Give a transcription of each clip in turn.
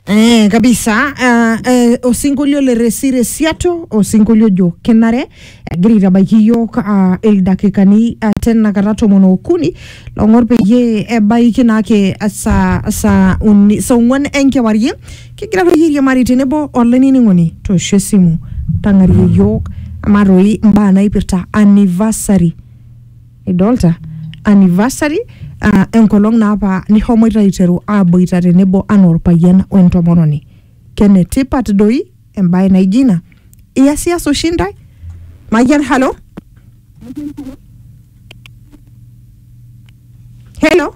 Eh, kabisa uh, eh, osinkolio le resire siato osinkolio ojo kenare egira aitabaiki iyiok uh, ildakikani uh, tenakata tomon okuni long'or peyie ebaiki naake saa saa uni saa ong'uan enkewarie kigira toi airiamari tenebo olainining'oni toosho esimu tang'arie iyiok amaa toi imbaa naipirta anniversary idolta anniversary uh, enkolong naapa nihomoita aiteru aboita tenebo anaa orpayian wentomononi kenetipat doi embaye naijo ina iyasias oshi ntae mayian halo helo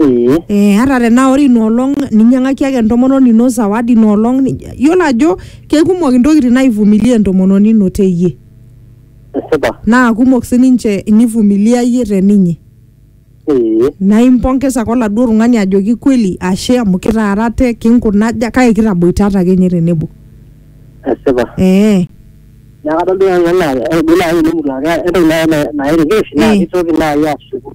ee Eh, ata tenaa ore inoolong ninyiang'aki ake entomononi ino zawadi inoolong ni- yiolo ajo kekumok intokitin naivumilia entomononi ino teyie esipa naa kumok sininche inivumilia iyie teninye ee naa impongesa ake oladuo tung'ani ajoki kweli ashe amu kitaarate kinkunaja kake kitaboitata ake ninye tenebo esipa ee neeku kadol duo nanu enaa ore duo naaji tenemutu ake entoki naaji na- nairikirish naa Ee. kitoki naaji ashuku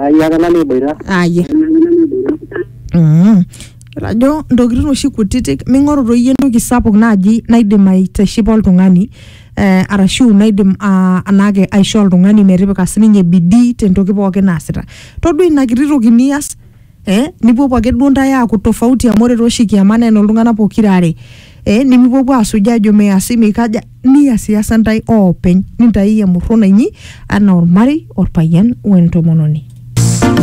Ayaka nanu eboita. aye Mm. ajo ntokitin oshi kutitik ming'oru toi iyie entoki sapuk naaji naidim aitishipa oltung'ani eh, arashu naidim ah, anaake aishoo oltung'ani metipika sininye bidii tentoki pookin naasita todua ina kiti toki nias eh, nipuopuo ake duo ntae aaku tofauti amu ore tooshi kiama naa enoltung'anak pokira are eh, nimipuopuo asuj ajo measi meikaja niasiasa ntae oopeny nintaiyie emurruna inyi anaa ormarei orpayian wentomononi